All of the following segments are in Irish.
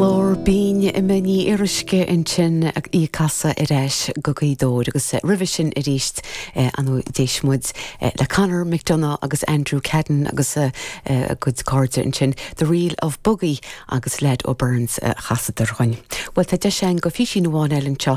Glór binn Emma Ní Fhíoruisce ansin agus í ag casadh Ar Ais go Gaoth Dobhair agus roimhe sin arís ar ndóigh d'éist muid le Conor McDonagh agus Andrew Caden agus a gcuid cairde ansin, The Reel of Bogie agus Lad O'Beirne's a chasadar dhúinn. Bhuel tá deis againn do phísín amháin eile anseo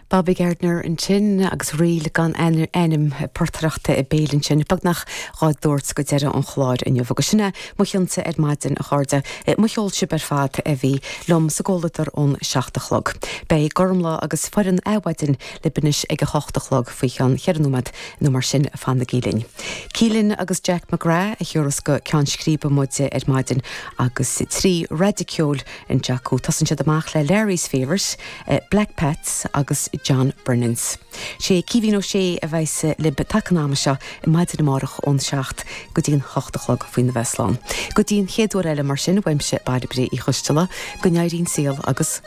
Bobby Gardiner ansin agus ríl gan ainm portaireacht bhéil ansin, beagnach dhár dtabhairt go deireadh an chláir inniu. Agus sin é mo chionsa ar maidin, a chairde. Mo cheol sibh ar fad a bhí liom sa gcomhluadar ón seacht a chlog. Beidh Gormlaith agus foireann Adhmhaidin libh anois ag a hocht a chlog, faoi cheann cheithre nóiméad nó mar sin. Fanaigí linn. Keelan agus Jack McGrath a thiúras go ceann scríbe muid ar maidin agus trí raidió ceoil, An té acu tosaíonn siad amach le Larry's Favourite, Black Pat's agus John Brennan's. Sé Caoimhín Ó Sé a bheas lib taca an ama seo ar maidin amárach ón 7 go dtí an 8 a chlog faoina bheith slán. Go dtí an chéad uair eile mar sin uaimse Bairbre Uí Choisteala, go n-éirí an saol agus.